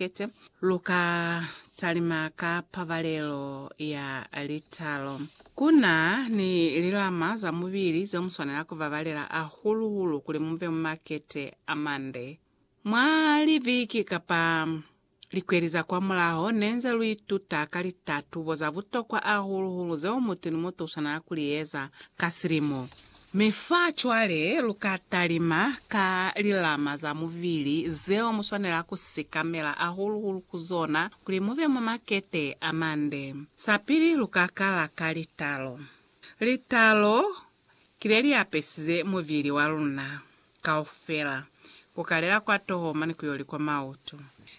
Kete. Lu ka talima ka pabalelo ya litalo. Ku na ni lilama za mubili zeo mu swanela ku babalela hahulu-hulu kuli mu be mwa kete a mande. Mwa libiki kapa likweli za kwamulaho, ne nze lu ituta ka litatubo za butokwa hahulu-hulu zeo mutu ni mutu u swanela ku li eza ka silimo. Mi fa cwale lu ka talima ka lilama za mubili zeo mu swanela ku sikamela hahulu-hulu ku zona kuli mu be mwa makete a mande. Sa pili lu ka kala ka litalo. Litalo ki le li apesize mubili wa luna kaufela, ku kalela kwa toho mane ku yo li kwa mautu.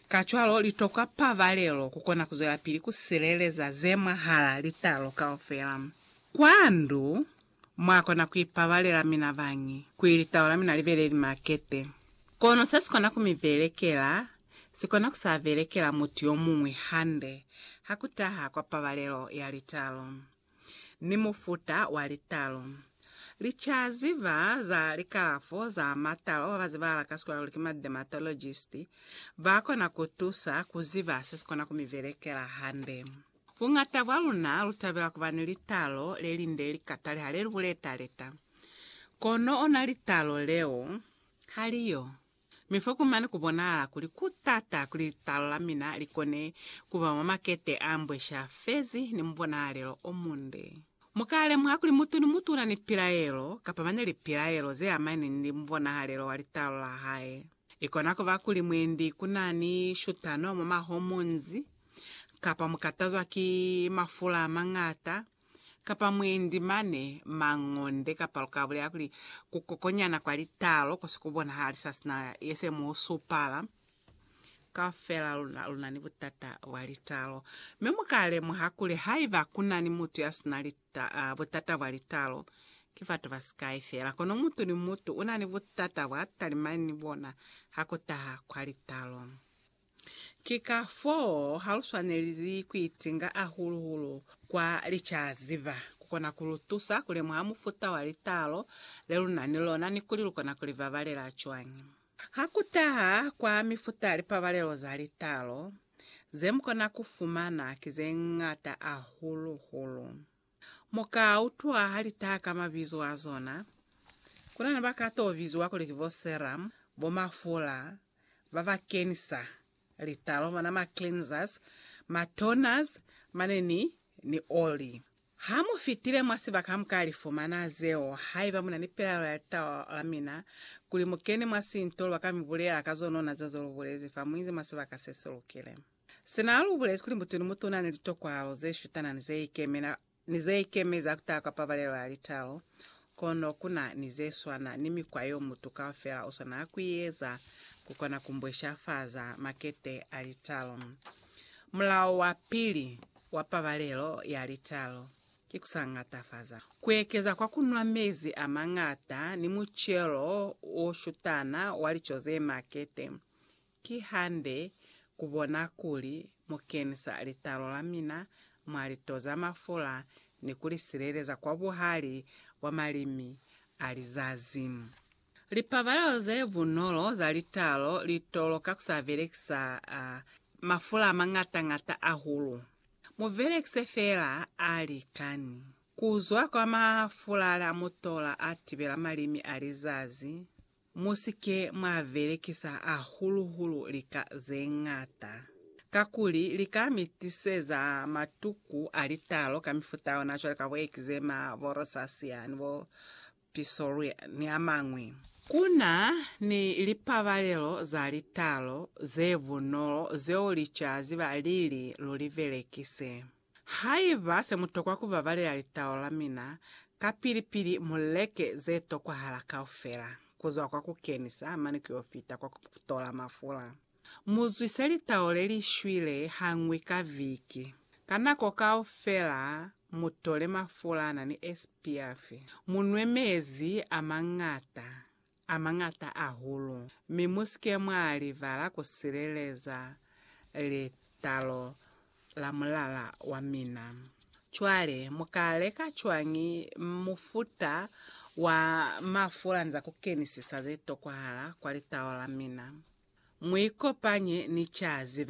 Kacwalo li tokwa pabalelo ku kona ku zwelapili ku sileleza ze mwahala litalo kaufela. Kwa ndu, Mwa kona ku ipabalela mina bañi, kuli litau la mina li be le li makete. Kono se si kona ku mi belekela, si kona ku sa belekela mutu yo muñwi hande, ha ku taha kwa pabalelo ya litau ni mufuta wa litau. Li ca ziba za likalafo za matau ba ba zibahala ka sikola kuli ki ma dermatologist, ba kona ku tusa ku ziba se si kona ku mi belekela hande. Buñata bwa luna lu tabela ku ba ni litalo le linde li katale ha le lu buleta-leta. Kono ona litalo leo ha li yo. Mi foku mane ku bonahala kuli ku t'ata kuli litalo la mina li kone ku ba mwa makete a mbwesha fezi ni mubonahalelo o munde. Mu ka lemuha kuli mutu ni mutu u na ni pilaelo, kapa mane lipilaelo ze amani ni mubonahalelo wa litalo la hae. Ikona kuba kuli mwendi kunani shutano mwa mahomonzi, kapa mukatazwa ki mafula amañata, kapa mwendi mane mangonde, kapa lukabulela kuli kukokonyana kwa litalo kosi kubonahali sasina yese muusupala. Kaufela luna lunani butata bwa litalo, mi mukalemuha kuli haiba kunani mutu yasina litalo, Taa, butata bwa litalo ki batu basikai fela, kono mutu ni mutu una ni butata bwa talimani ni bona ha ku taha kwa litalo. Ki ka foo ha lu swanelizi ku itinga ahulu-hulu kwa licaziba. Ku kona ku lu tusa ku lemuha mufuta wa litalo le lu na ni lona ni kuli lu kona ku li babalela cwañi. Ha ku taha kwa mifuta ya lipabalelo za litalo, ze mu kona ku fumana ki ze ñata hahulu-hulu. Mu ka utwa ha li taha ka mabizo a zona. Ku na ni ba ka t'o biziwa kuli ki bo serum, bo mafula, ba ba kenisa litalo, bona ma cleansers, ma toners, mane ni, ni oli. Ha mu fitile mwa sibaka ha mu ka li fumana zeo. Haiba mu na ni pelaelo ya litaba la mina, kuli mu kene mwa sinto, lwa ka mi bulela ka zonona zeo ze lu bulezi fa mu inzi mwa sibaka se si lukile. Sina lu bulezi kuli mutuni mutu u na ni litokwalo ze shutana ni ze ikemela ni ze ikemezi ha ku taha kwa pabalelo ya litalo, Kono ku na ni ze swana ni mikwa yeo mutu kaufela u swanela ku i eza ku kona ku mbweshafaza makete a litalo. Mulao wa pili wa pabalelo ya litalo ki ku sa ñatafaza. Ku ekeza kwa ku nwa mezi a mañata ni mucelo o shutana wa lico ze makete, Ki hande ku bona kuli mu kenisa litalo la mina mwa lito za mafula ni ku li sileleza kwa buhali bwa malimi a lizazi. Lipabalelo ze bunolo za litalo li tolo ka ku sa belekisa mafula a mañata-ñata ahulu. Mu belekise feela a likani. Ku zwa kwa mafula a mu tola a tibela malimi a lizazi. Mu si ke mwa belekisa hahulu-hulu lika ze ñata, kakuli lika mi tiseza matuku a litalo ka mifuta ona cwale ka bo ekizema, bo rosacea, ni bo psoriasis, ni a mañwi. Ku na ni lipabalelo za litalo ze bunolo zeo licaziba lili lu li belekise. Haiba se mu tokwa ku babalela litaolo la mina, kapili-pili mu leke ze tokwahala kaufela, ku zwa kwa ku kenisa mane ku y'o fita kwa ku tola mafula. Mu zwise litaolo le li shwile ha ñwi ka viki. Ka nako kaufela mu tole mafula a na ni esipiafi, mu nwe mezi a mañata, a mañata ahulu, mi mu si ke mwa libala ku sileleza litalo la mulala wa mina. Cwale, mu ka leka cwañi mufuta wa mafula ni za ku kenisisa ze tokwahala kwa litalo la mina? Mu ikopanye ni ca ziba